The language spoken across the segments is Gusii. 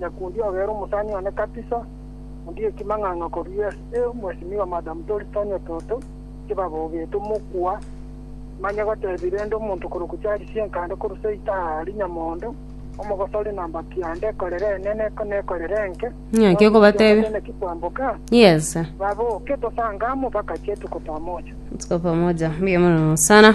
na kundi ogere omosani one kabisa, undi ekimang'ang'a korwa ase Mheshimiwa Madam Doris Tanya Toto, chibaba obete mokua, manye gotebi rende omonto korokwa Charles Senkande korwa Seita aa Rinyamondo, omogosori na mbaki ande ekorere enene na ekorere enke, Ng'aki okobatebia? Tene ki kwamboka, Yes. babe oke tosanga amo mpaka chetuko pamoja. Tuko pamoja. Mbuya mono sana.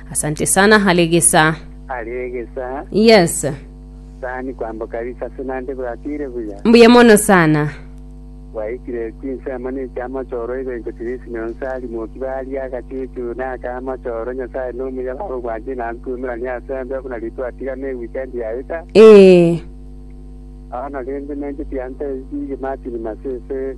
Asante sana Halegesa. Halegesa. Yes. Sani kwambo kabisa ase nande bwatire buya. Mbuya mono sana. Bwaikire chinsemo ne chiamachoro ebencho Chris ne Onsali moki baria agachuchu na aka amachoro Nyasaye no muya baba obwanchani na ntumerania ase mbe buna ritu atiga ne weekend yaeta. Ee. Bono rende nenche tiantebie Martin Masese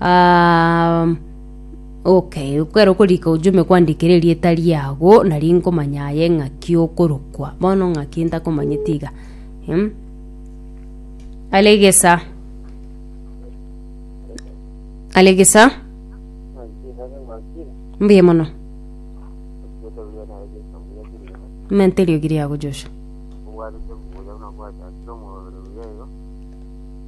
Ah, um, okay ekero okorika ojume kwandikire erieta riago nari nkomanya aye ng'aki okorokwa bono ng'aki ntakomanyeti iga Em? alegesa alegesa mbuya mono mente eriogi riago joshua